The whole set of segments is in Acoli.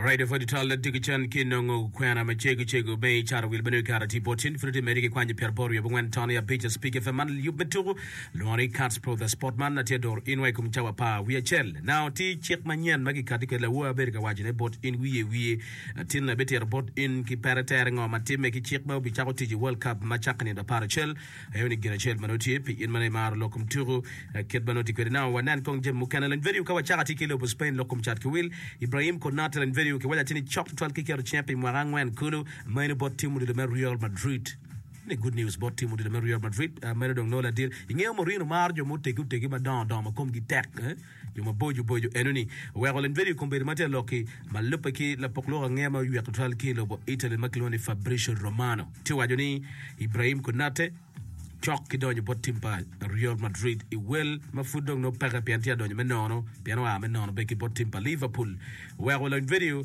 Radio for detail let dig chan ki nongo kwena ma cego cego be i cara wil bene kara ti bot in friti meri ki kwanyo pyer bor yobo wen tony abica speak fm man yub me tuku lungo ni cats pro the sport man atye dor in wai kum cawa pa wi acel now ti cik ma nyen ma kikati ke lawo abedo ka waco ne bot in wiye wiye atin na bitiro bot in ki pere tere ngo ma timme ki cik ma obi cako tic i world cup ma cakka nino apar acel Aye ni gin acel ma nongo tye pi in ma nongo imaro lok kom tuku kit ma nongo tye kwede. Now wanen kong jami mukene. Lany video Ka Wacaka Tye ki i Lobo Spain Lok Kom Cat ki Wil, Ibrahim Konate Lany video ki Waca Tye ni Cok Tutwal ki Keto Cinge pi Mwaka Angwen Kulu Meno Bot Tim Odilo me Real Madrid Ni Good News Bot Tim Odilo me Real Madrid Meno Dong Nongo Ladit Ingeyo Mourinho Maro Jo Mutegi Otegi Madongo Dongo ma Komgi Tek eh? Yo maboco boco enoni oweko limbedo i kom bedo ma tye ka lok-ki ma lubbe ki lapok lok angeya ma oywek tutwal ki i lobo Italy ma kilwongo ni Fabrizio Romano, tye ka waco ni Ibrahim Konate cok ki donyo bot tim pa Real Madrid i wel ma pud dong nongo peke pien tye ka donyo me nono pien oa me nono bene ki bot tim pa Liverpool. Oweko limbedo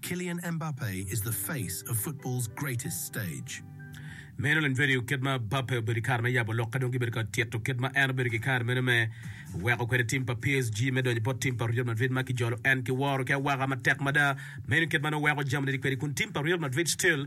Kylian Mbappe is the face of football's greatest stage. Meno lany vedio kit ma Mbappe obedo i kare me yabo lok ka dong gibedo ka tito kit ma en obedo ki kare meno me weko kwede tim pa PSG me donyo bot tim pa Real Madrid ma kijolo en ki woro ki awaka matek mada. Meno kit ma nongo weko jami ni kwedi kun tim pa Real Madrid still